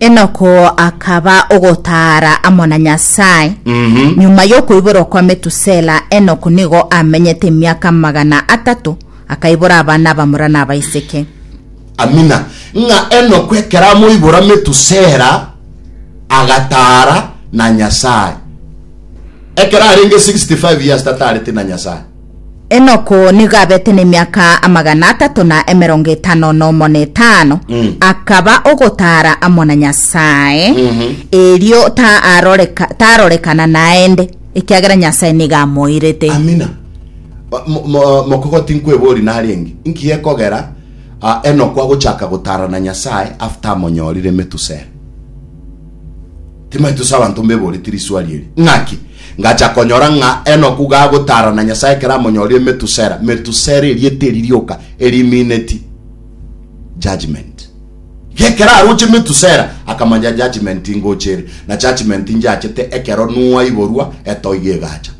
Enoko akaba ogotaara amo na Nyasae. Nyuma y'okoiborwa kwa Metusela, Enoko nigo amenyete emiaka amagana atato, akaibora abana abamura na abaiseke. Amina. Ng'a Enoko ekero amoibora Metusela, agataara na Nyasae. Ekero arenge 65 years tataarete na Nyasae. Enoku nigo abete nemiaka amagana atato na emerongo etano nomo na etano, Mm. akaba ogotara amo na Nyasae, Mhm. erio taaroreka- taarorekana naende, ekiagera Nyasae nigo amoirete. amina Ba- mo- mo- mokogo tinkwebori nari engi nki gekogera ah, enoko agochaka gotara na nyasaye after amonyorire metusere Timaeti tose abanto mbeboreti riswali eri, ng'aki ngacha konyora ng'a Enoku gagotaarana Nyasae ekero amonyorie Metusela. Metusela erieta eri rioka erimineti judgment. Gekero aroche Metusela akamanya judgment ingocha ere, na judgment injachete ekero Nuhu aiborwa etoigo egacha.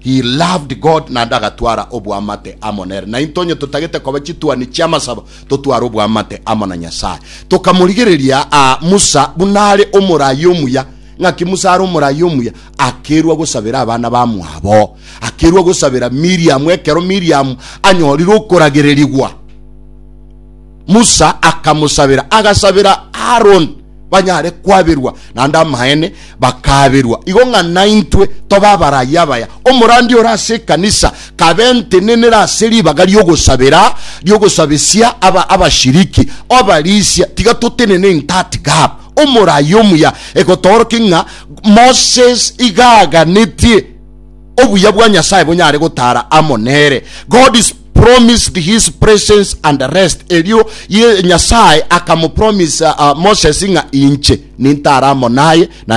He loved God naende agatwara oboamate amo nere. Nainto onye totagete koba chituani chi'amasabo, totware oboamate amo na Nyasae. Tokamorigereria aa Musa buna are omoraai omuya. Ng'aki Musa are omoraai omuya? Akeirwa gosabera abana bamwabo. Akeirwa gosabera Miriamu ekero Miriamu anyorire okoragererigwa. Musa akamosabera, agasabera Aroni banyare kwaberwa, naende amaene bakaberwa, igo ng'a naintwe tobe abarai abaya. Omorandia ore ase ekanisa kabentenenere ase ribaga ri'ogosabera ri'ogosabesia aba abashiriki. Obarisia, tiga totenene in that gap. Omorai omuya egotoorokia ng'a Moses iga aganetie. obuya bwa Nyasae bonyare gotara amo nere. God is promised his presence and rest. Erio Nyasae akamopromisa uh, Moses ng'a inche nintare amo naye na